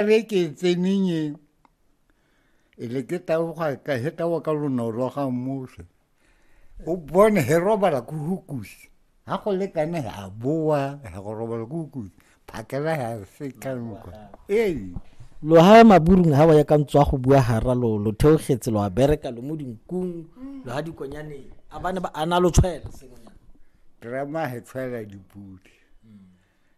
re ke e tseneng e e le ke taoga ka he tawa ka lonolo ga mose o bone he robala ko hukusi ga go le kane a boa he go robala ko hukusi phakela ya se ka nka ee loha maburung ha wa ya ka ntswa go bua hara lo lo theogetse lo a bereka lo mo dinkung lo ha dikonyane a bane ba ana lo tshwela sengonyana drama he tshwela dipudi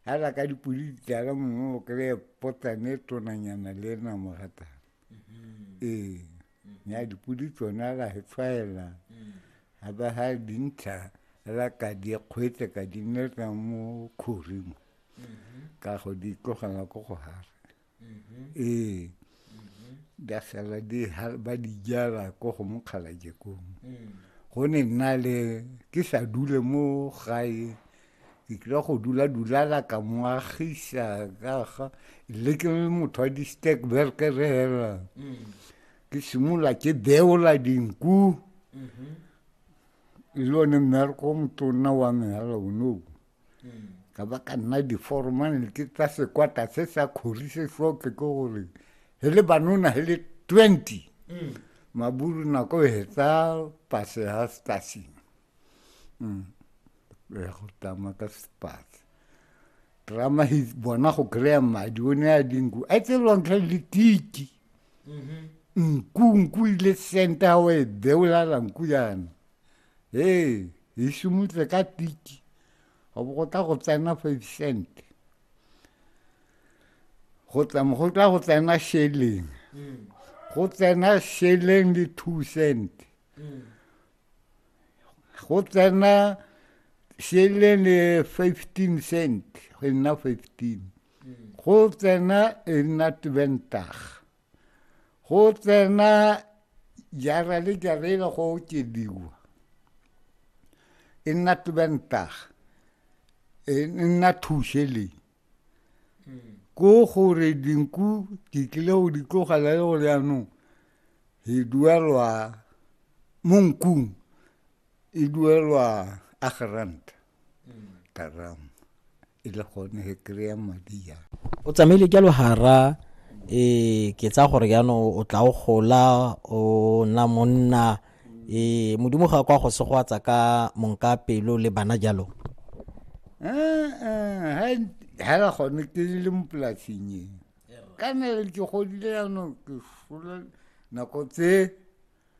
hela ka dipodi di tlala mongwe o kry-e potsane e tonanyana le ena mogata mm-hmm. ee mm-hmm. ya dipodi tsona la e tshwaela ga mm. ba ga dintlha la ka di kgwetse ka di nnetsa mo kgoring mm-hmm. ka go di tlogela ko go gara ee di a sala di ha- ba di jala ko go mokgalaje kong go ne nna le ke sa dule mo gae ke kile go dula dulala ka moagisa ka ga le ke le motho wa di-stekberke re hela ke simolola ke beola dinku e le one mmereko o motonna wa me hela onoo ka ba ka nna diforomane ke tsa sekwata se sa kgori se sotle ke gore he le banona he le twenty mm. maburu nako e hetsa pase ha stasing mm. ya go tama ka sepase drama he bona go kry-a madi o ne a dinku a tse lontlha le tiki mm-hmm. nku nku ile senta wa e beolala nku yana ee e šomutle ka tiki go bo go tla go tsena five cent go tla go tsena sheleng go tsena sheleng le two cent go tsena sheleng le fifteen cent go nna fifteen go tsena e nna twentage go tsena jara le jara e le go okediwa e nna tubentaga e nna thušeleng ko gore dinku di tlile go di tlogela le gore yanong e duelwa mo nkung e duelwa a geranta ka rama e le gone he kry-a madi ya o tsamaile jalo hara e ke tsa gore jaanong o tla o gola o nna monna e modimo ga kwa go segwatsa ka monka pelo le bana jalo eh, eh, ha la gone ke le mo polasing e ka nele ke godile jaanong ke sola nako tse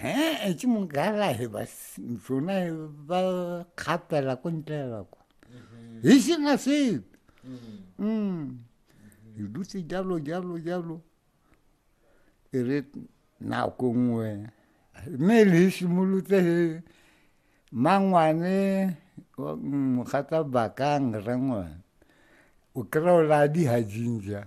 he e ke mong ka la he ba tsona ba kgapela ko ntlela ko he se na se mm e dutse jalo jalo jalo e re na ko ngwe me le simolotse he mangwane mogata bakang rangwa o kra o la di ha jinja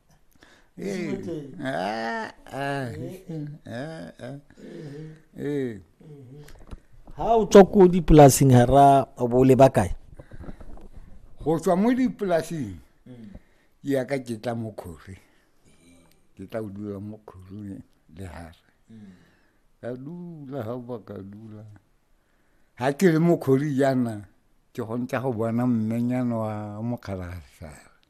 Ei, ah, ah, ah, ah. Ee. ha o tswa ko dipolaseng ha ra o bo o leba kae go tswa mo dipolaseng ke ya ka ke tla mo kgori ke tla o dula mo kgori le hare ka dula ga ba ka dula ga ke le mo kgori jaana ke gontsa go bona mmenyana wa mokgalagasa